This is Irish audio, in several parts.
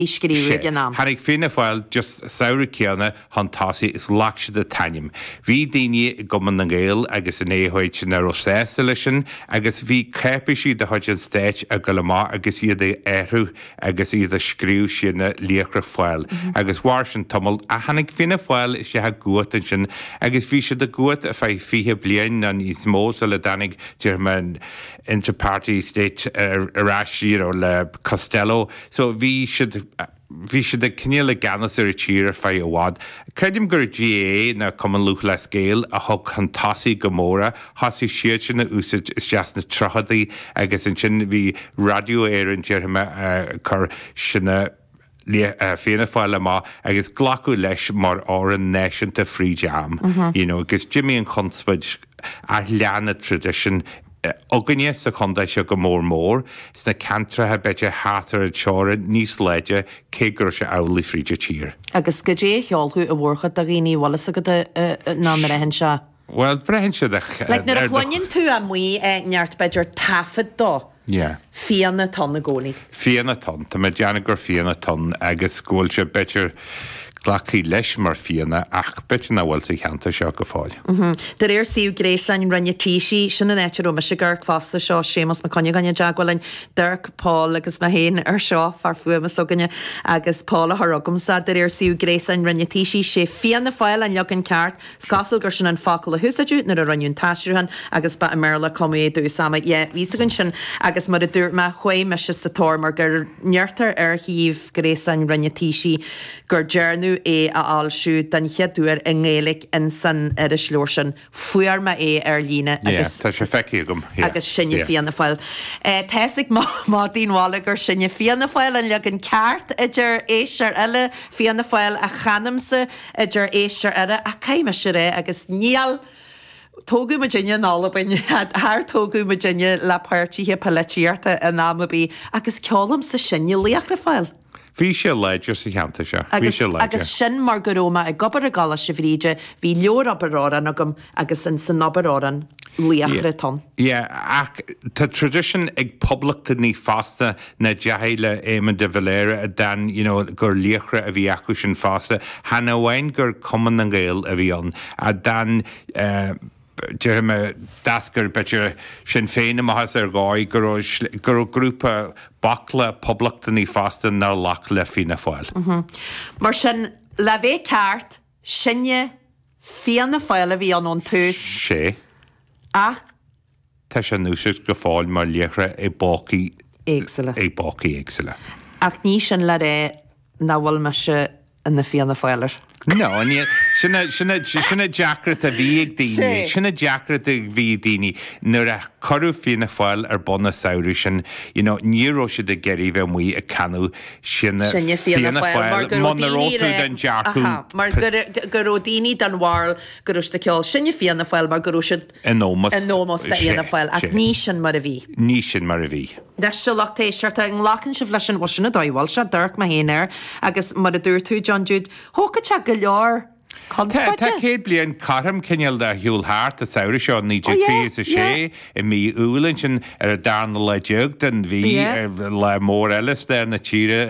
í scríobhadh ag an am. Tháinig Fianna Fáil just samhradh céanna chun tosaigh is ghlac siad an t-ainm. Bhí daoine i gCumann na nGaedheal agus in AOH ná raibh sásta leis sin agus bhí cáipéisí de chuid an Stáit ag goil amach agus iad a athrú agus iad ag scríobh Sinne Laochra Fáil agus mhair sin tamall ach tháinig Fianna Fáil isteach i gcumhacht ansin agus bhí siad i gcumhacht ar feadh fiche bliain ná níos mó sula dtáinig déarfaidh mé an inter-party state ar ais you know le Costello. So bhí siad, bhí siad cineál i gceannas ar an tír ar feadh i bhfad. Creidim gur GAA ná Cumann Lúthchleas Gael a thug chun tosaigh go mór é, thosaigh siadsan á úsáid isteach sna tríochadaí agus ansin bhí Radio Éireann déarfaidh mé ag cur Sinne Fianna Fáil amach agus glacadh leis mar amhrán náisiúnta fríd am, you know, agus d'imigh an chonspóid ach lean an traidisiún. againne sa chontae seo go mór mór sna ceantracha b'fhéidir thart ar an teorainn níos láidre cé go raibh sé amhlaidh fríd an tír. Agus goidé a cheolfadh an mhórchuid de dhaoine an bhfuil fhios agat a, a, ná an mbraitheann sé. Bhuel, braitheann sé ar, ar do. Like nuair a chluineann tú amuigh é neart b'fhéidir taifead dó. Yeah. Fianna atá ann i gcónaí. Fianna atá ann. Tá mé ag déanamh gur fianna atá ann agus go bhfuil sé, b'fhéidir, glactha leis mar fianna ach b'fhéidir nach bhfuil sa cheantar seo go fóill. De réir suíomh gréasáin Roinn an Taoisigh, sin an áit a raibh mise ag amharc fosta, seo Séamus Mac Cuinneagáin i dteagmháil linn, d'amharc, Paul agus mé féin air seo, fear fuaime s'againne agus Paul a chuir chugamsa. De réir suíomh gréasáin Roinn an Taoisigh, sé Fianna Fáil an leagan ceart. Is cosúil gur sin an focal a húsáideadh nuair a rinneadh an t-aistriúchán agus ba i mBéarla a cumadh é i dtús ama Yé, bhí fhios againn sin agus mar a dúirt mé, chuaigh mise sa tóir mar go ndeirtear ar shuíomh gréasáin Roinn an Taoisigh gur dearnadh é a fhoilsiú den chéad uair i nGaeilge insan irisleabhar sin. Fuair mé é ar líne Yé, agus. tá sé feicthe agam. Yé. Agus Sinne Yé. Fianna Fáil. Tá fhios ag madaí an bhaile gur Sinne Fianna Fáil, an leagan ceart, a deir éisteoir eile, Fianna Fáil a chanaimse, a deir éisteoir eile ach caithfidh mise a rá agus níor tógadh muidinne in Albain char tógadh muidinne le páirtithe polaitíochta in am ar bith agus ceolaimse Sinne Laochra Fáil. Bhí sé láidir sa cheantar seo. Bhí sé láidir. Agus sin mar go raibh mé ag obair i gColáiste Bhríde, bhí leabhar Abair Amhrán agam, Agus insan Abair Amhrán laochra atá ann. Yeah, ach tá tradition ag poblachtánaigh fosta ná deachaigh le Éamon de Valera a d'fhan, you know, gur laochra a bhí acusan fosta. Chan amháin gur Cumann na nGael a bhí ann, a d'fhan eh, déarfaidh mé, d'eascair b'fhéidir Sinn Féin amach as ar dhóigh go raibh, go raibh grúpa, baicle poblachtánaigh fosta nár ghlac le Fianna Fáil. Mm-hmm. Mar sin, le bheith ceart, Sinne, Fianna Fáil, a bhí ann ón tús. sé. Ach. tá sé in úsáid go fóill mar liathróid i bpócaí éagsúla. i bpócaí éagsúla. Ach ní sin le rá nach bhfuil mise ina Fianna Fáiler. No, ní, sin a, sin a, sin an deacracht a bhí ag daoine, sé. sin an deacracht a bhí ag daoine nuair a cuireadh Fianna Fáil ar bun an samhradh sin, you know, ní raibh siad ag iarraidh bheith amuigh ag canadh Sinne Fianna Fáil, muna raibh tú den dearcadh. go raibh daoine den bharúil go raibh siad ag ceol Sinne Fianna Fáil mar go raibh siad. in ómós do Fhianna Fáil. Ach ní sin mar a bhí. Ní sin mar a bhí. Leis seo, lucht éisteachta, an nglacann sibh leis an bhuel sin a d'fhoilsigh, d'amharc mé féin air agus mar a dúirt tú, John Jude, thógfadh sé go leor. Tá céad bliain cothrom cineál ar shiúl thart, an samhradh seo 1926, i mí Iúil ansin, ar an darna lá déag den mhí, lá mór eile i stair na tíre,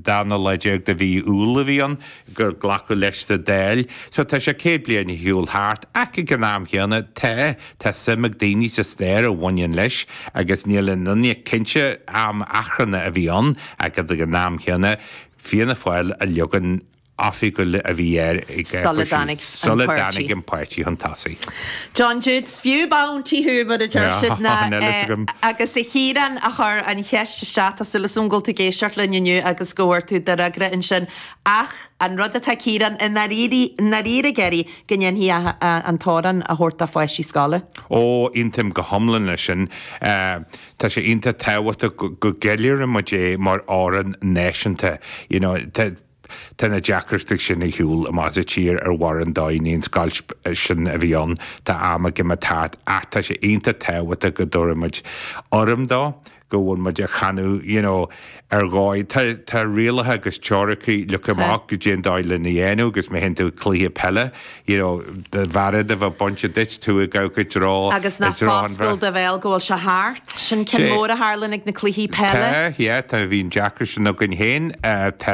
darna lá déag de mhí Iúil a bhí ann, gur glacadh leis sa Dáil. So tá sé céad bliain ar shiúl thart, ach ag an am chéanna, tá, tá suim ag daoine sa stair a bhaineann leis, agus níl aon duine cinnte, am achrannach a bhí ann, ach ag an am chéanna, Fianna Fáil an leagan, oifigiúil a bhí air agus sula dtáinig an páirtí chun tosaigh. John Jude, is fiú punta thú, mar a deir siad. Tá an t-eolas agam. Agus a Chiaráin, a chuir an cheist isteach, tá súil 's agam go bhfuil tú ag éisteacht linn inniu agus go bhfuair tú do fhreagra ansin. Ach an rud atá Ciarán i ndáiríre ag iarraidh, go ndéanfaí an t-amhrán a thabhairt do pháistí scoile. Ó, aontaím go hiomlán leis sin. Tá sé iontach tábhachtach go gceiliúrfaidh muid é mar amhrán náisiúnta. Tá na deacrachtaí sin ar shiúl i mbás an tír ar bharr an domhain, an scoilt sin a bhí ann, tá am ag imeacht thart, ach tá sé iontach tábhachtach go dtabharfaidh muid urraim dó, go bhfuil muid á chanadh, you know, ar dhóigh. Tá, tá rialacha agus treoracha, look them up, caidé an dóigh lena dhéanamh agus má théann tú ag cluiche peile, you know, do bhearád a bheith bainte duit, tú ag amharc i dtreo, i dtreo an bhrait. Agus ná foscail do bhéal go bhfuil sé thart, sin ceann mór a tharlaíonn ag na cluichí peile. Tá, yeah, tá, bhí an deacracht sin againn féin, tá.